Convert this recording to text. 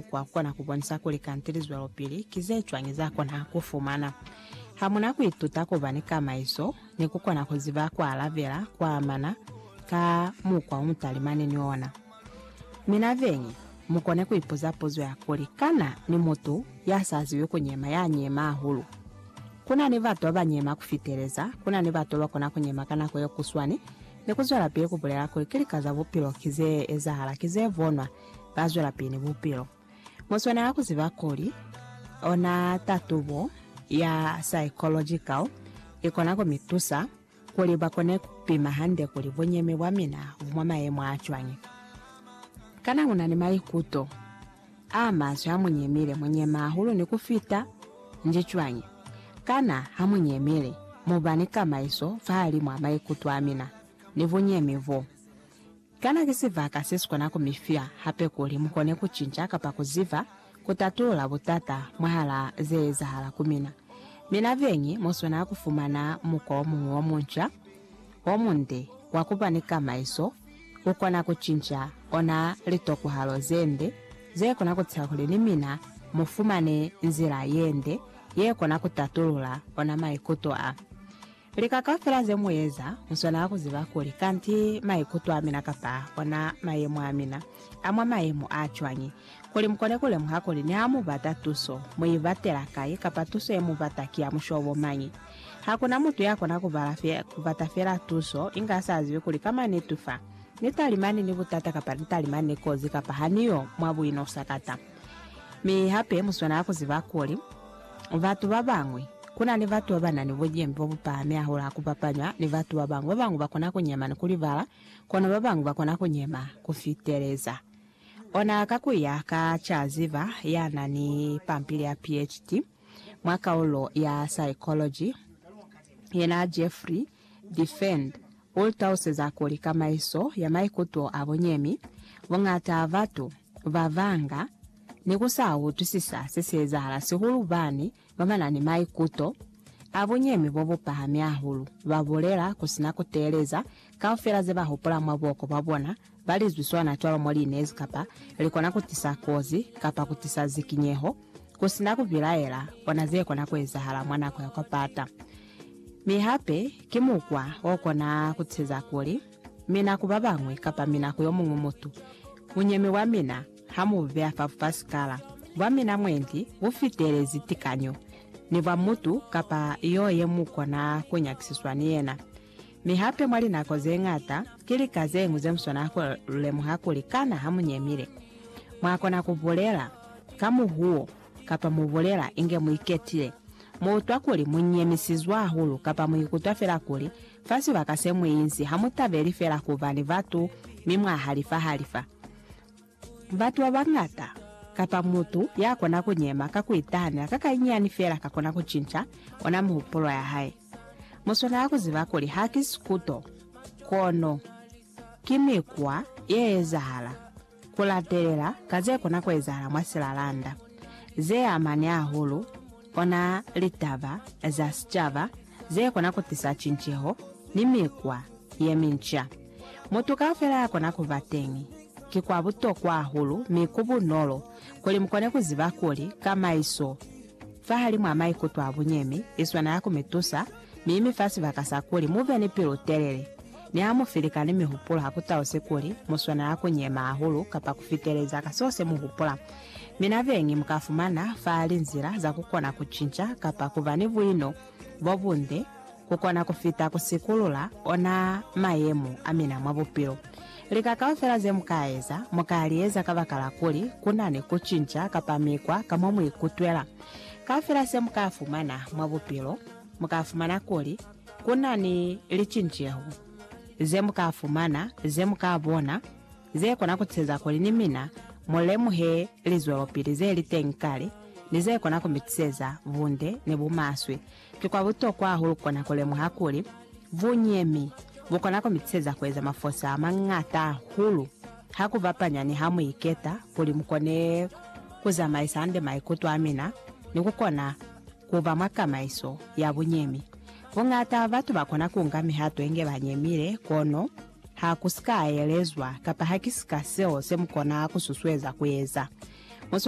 Kwa kona ku bonisa kuli kanti lizwelopili ki ze cwañi za kona ku fumana ha mu na ku ituta ku ba ni kamaiso ni ku kona ku ziba ku alabela kwa amana ka mukwa o mu talimani ni ona. Mi na beñi, mu kone ku ipuza puzo ya kuli, Kana ni mutu ya sa zibi ku nyema ya nyema hahulu? Ku na ni batu ba ba nyema ku fiteleza. Ku na ni batu ba ba kona ku nyema ka nako ye kuswani ni ku zwelapili ku bulela kuli ki lika za bupilo ki ze ezahala, ki ze bonwa, ba zwelapili bupilo. Mu swanela ku ziba kuli ona tatubo ya psychological i kona ku mi tusa kuli ba kone ku pima hande kuli bunyemi bwa mina bu mwa mayemo a cwañi. Kana u na ni maikuto a maswe ha mu nyemile? Mu nyema hahulu ni ku fita? Nji cwañi? Kana ha mu nyemile mu ba ni kamaiso fahalimu a maikuto a mina ni bunyemi bo? Kana ki sibaka se si kona ku mi fya hape kuli mu kone ku cinca kapa ku ziba ku tatulula butata mwahala ze ezahala ku mina? Mi na beñi mu swanela ku fumana mukwa o muñwi o munca, o munde, wa ku ba ni kamaiso, ku kona ku cinca ona litokwahalo ze nde ze kona ku tisa kuli ni mina mu fumane nzila ye nde ye kona ku tatulula ona maikuto a. Lika kaufela ze mu eza, mu swanela ku ziba kuli kanti maikuto a mina kapa ona mayemo a mina a mwa mayemo a cwañi, kuli mu kone ku lemuha kuli niha mu bata tuso, mu i batela kai, kapa tuso ye mu bata ki ya mushobo mañi. Ha ku na mutu ya kona ku bala fe, ku bata fela tuso, inge a sa zibi kuli ka mwa netu fa, ni talimani ni butata kapa ni talimani ni kozi kapa ha ni yo mwa buinosa kata. Mi hape mu swanela ku ziba kuli, Batu ba bañwi. Ku na ni batu ba ba na ni bucimi bo bu pahami hahulu ha ku bapañwa ni batu ba bañwi. Ba bañwi ba kona ku nyema ni ku libala, kono ba bañwi ba kona ku nyema ku fiteleza. Ona ka ku ya ka ca ziba ya na ni pampili ya PhD mwa kaulo ya psychology, yena Jeffrey Diffend, u lu taluseza kuli kamaiso ya maikuto a bunyemi, buñata batu, Babanga ne ku sa utwisisa se si ezahala sihulu bani ba ba na ni maikuto a bunyemi bo bu pahami hahulu. Ba bulela ku si na ku teeleza kaufela ze ba hupula mwa buhoko bwa bona, ba lizwi sona cwalo mo li nezi kapa li kona ku tisa kozi kapa ku tisa zikinyeho, ku si na ku bilaela ona ze kona ku ezahala mwa nako ya kwa pata. Mi hape ki mukwa o kona ku teza kuli, Mina ku babañwi kapa mina ku yomuñwi mutu, bunyemi bwa mina ha mu bu beya fa bupasikala bwa mina mwendi bu fitelezi tikanyo, ni bwa mutu kapa yo ye mu kona ku nyakisiswa ni yena. Mi hape mwa linako ze ñata, ki lika zeñwi ze mu swanela ku lu lemuha kuli kana ha mu nyemile. Mwa kona ku bulela ka muhuwo kapa mu bulela inge mu iketile, mu utwa kuli mu nyemisizwe hahulu kapa mu ikutwa fela kuli Fa sibaka se mu inzi, ha mu tabeli fela ku ba ni batu mi mwa halifa-halifa. Batu ba bañata, kapa mutu ya kona ku nyema ka ku itahanela ka kanyinyani fela ka kona ku cinca ona mihupulo ya hae. Mu swanela ku ziba kuli haki sikuto, kono ki mikwa ye ezahala. Ku latelela ka ze kona ku ezahala mwa silalanda ze amani hahulu ona litaba za sicaba ze kona ku tisa cinceho ni mikwa ye minca. Mutu kaufela ya kona ku ba teñi. Ki kwa butokwa hahulu mi ku bunolo kuli mu kone ku ziba kuli kamaiso fahalimw'a maikuto a bunyemi i swanela ku mi tusa mi mi fa sibaka sa kuli mu be ni pilu-telele Ne a mu fi likani mi hupulo ha ku tause kuli mu swanela ku nyema hahulu kapa ku fiteleza ka seo se mu hupula. Mina beñi mu ka fumana fa linzila za ku kona ku cinca kapa ku ba ni buino bo bunde ku kona ku fita ku sikulula ona mayemo a mina mwa bupilo. Lika kaufela ze mu ka eza, mu ka li eza kabakala kuli ku na ni ku cinca kapa mikwa ka mo mu ikutwela. Kaufela se mu ka fumana mwa bupilo, mu ka fumana kuli, Ku na ni licinceho ze mu ka fumana, ze mu ka bona, ze kona ku tiseza kuli ni mina mu lemuhe lizwelopili ze li teñi kale ni ze kona ku mi tiseza bunde ni bumaswe. Ki kwa butokwa hahulu ku kona ku lemuha kuli bunyemi bu kona ku mi tiseza ku eza mafosa a mañata hahulu ha ku bapanya ni ha mu iketa kuli mu kone ku zamaisa hande maikuto a mina ni ku kona ku ba mwa tamaiso ya bunyemi. Buñata batu ba kona ku nga mihato inge ba nyemile, kono ha ku si ka elezwa kapa ha ki si ka seo se mu kona ku susueza ku eza.